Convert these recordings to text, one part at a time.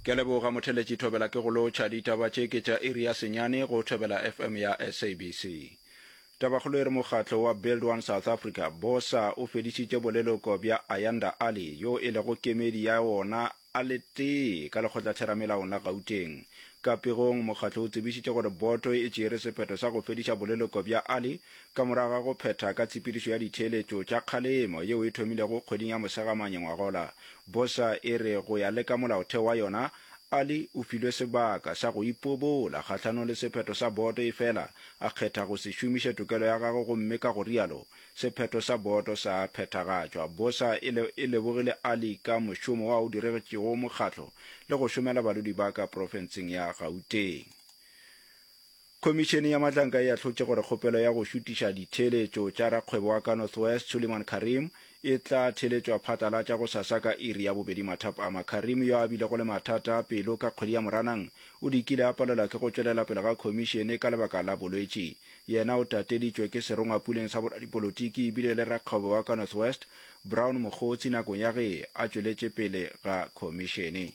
Ke a leboga motheletši Thobela ke go lotšha ditaba tše ke tša iri ya senyane go Thobela FM ya SABC. Tabakgolo e re mokgatlo wa Build One South Africa, BOSA, o fedišitše boleloko bja Ayanda Ali yo e lego kemedi ya wona a le tee ka lekgotlatheramelaong la Gauteng. Ka pegong, mokgatlo o tsebišitše gore boto e tšeere sephetho sa go fediša boleloko bja Ali Ka morago ga go phetha ka tshepedišo ya ditheeletšo tša kgalemo yeo e thomilego kgweding ya Mosegamanye ngwagola, bosa e re go ya le ka molaotheo wa yona, Ali o filwe sebaka sa go ipobola kgahlanong le sephetho sa boto efela a kgetha go se šomiše tokelo ya gagwe gomme ka go rialo sephetho sa boto sa phethagatšwa. Bosa e le e lebogile Ali ka mošomo wa o diregetšego mokgatlo le go šomela badudi ba ka profenseng ya Gauteng. Khomišene ya Mahlanka e ahlotše gore kgopelo ya go šutiša ditheeletšo tša rakgwebo wa ka North West Suliman Karim e tla theeletšwa phatlalatša gosasa ka iri ya bobedi mathapama. Karim yo a bilego le mathata a pelo ka kgwedi ya Moranang o dikile a palelwa ke go tšwelela pele ga khomišene ka lebaka la bolwetši. Yena o tateditšwe ke serongwapuleng sa boradipolotiki ebile le rakgwebo wa ka North West Brown Mogotsi nakong ya ge a tšweletše pele ga khomišene.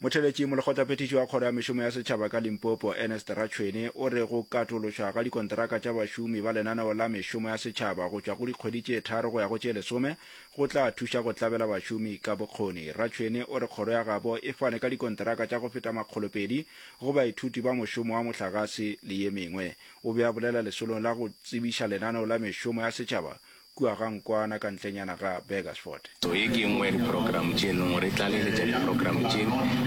motheletši molekgotlaphethiši wa kgoro ya mešomo ya setšhaba ka limpopo ernest ratšhwene o re go katološwa ga dikonteraka tša bašomi ba lenaneo la mešomo ya setšhaba go tšwa go dikgwedi tše tharo go ya go tše lesome go tla thuša go tlabela bašomi ka bokgoni ratšhwene o re kgoro ya gabo e fane ka dikonteraka tša go feta makgolopedi go baithuti ba mošomo wa mohlagase le ye mengwe o be a bolela lesolong la go tsebiša lenaneo la mešomo ya setšhaba kua ga Nkwana ka ntlenyana ga Burgersfort. So ye ke e nngwe ya diprogramo tše e leng gore e tlaleletša diprogramo tše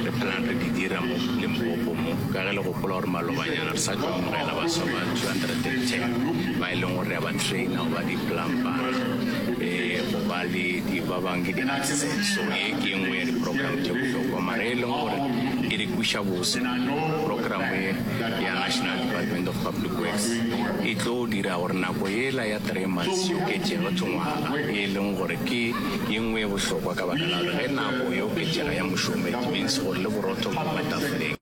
re phelang re di dira mo Limpopo mo, ka ge le gopola gore malobanyana re sa tlo amogela baswa ba 210 ba e leng gore re a ba traina go ba di-plumbara um go ba le di ba bang ke di-artisans. So ye ke e nngwe ya diprogramo tše bohlokwa mara e leng gore e re kwiša bose programo ye ya National Department of Public Works e tlo dira gore nako yela ya Three months e oketšega to ngwaga, e leng gore ke ye nngwe ye bohlokwa ka baka la gore ge nako e oketšega ya mošomo it means gore le borotho bo ba tafoleng.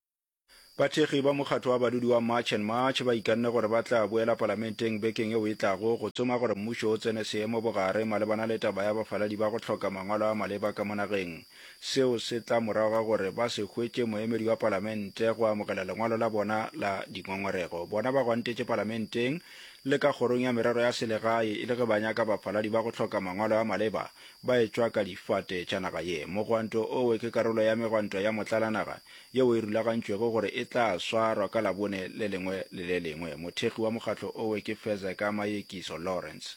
Bathekgi ba mokgatho wa badudi wa March and March ba ikanne gore ba tla boela palamenteng bekeng yeo e tlago go tsoma gore mmušo o tsene seemo bogare malebana le taba ya bafaladi ba go hloka mangwalo a maleba ka mo nageng. Seo se tla morago ga gore ba se hwetše moemedi wa palamente go amogela lengwalo la bona la dingongorego. Bona ba gwantetše palamenteng le ka Kgorong ya Merero ya Selegae e le ge ba nyaka bafaladi ba go hloka mangwalo a maleba ba etšwa ka difate tša naga ye. Mogwanto owe ke karolo ya megwanto ya motlalanaga yeo e rulagantšwego gore e tla swarwa ka Labone le lengwe le le lengwe. Mothekgi wa mokgatlo owe ke Fezeka Mayekiso Lawrence.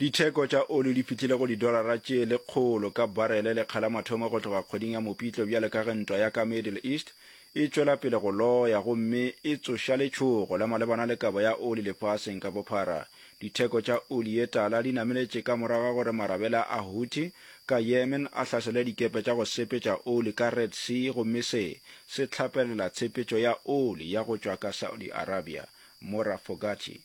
Ditheko tša oli di fihlile go didolara tše lekgolo ka barele lekga la mathomo go tloga kgweding ya Mopitlo bjale ka ge ntwa ya ka Middle East e tšwela pele go loya gomme e tsoša letšhogo la malebana le kabo ya oli lefaseng ka bophara. Ditheko tša oli ye tala di nameletše ka morago ga gore marabela a Houthi ka Yemen a hlasele dikepe tša go sepetša oli ka Red Sea gomme se se hlapelela tshepetšo ya oli ya go tšwa ka Saudi Arabia. Mora Fogarty.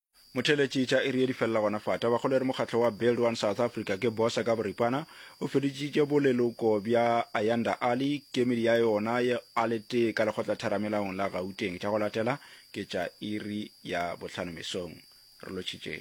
Motheeletši tša iri ye di felela gona fa. Tabakgolo e re mokgatlo wa Build One South Africa ke bosa ka boripana o feditšitše boleloko bja Ayanda Ali kemedi ya yona a le tee ka lekgotlatheramelaong la Gauteng. Tša go latela ke tša iri ya bohlano mesong. Re lotšhitše.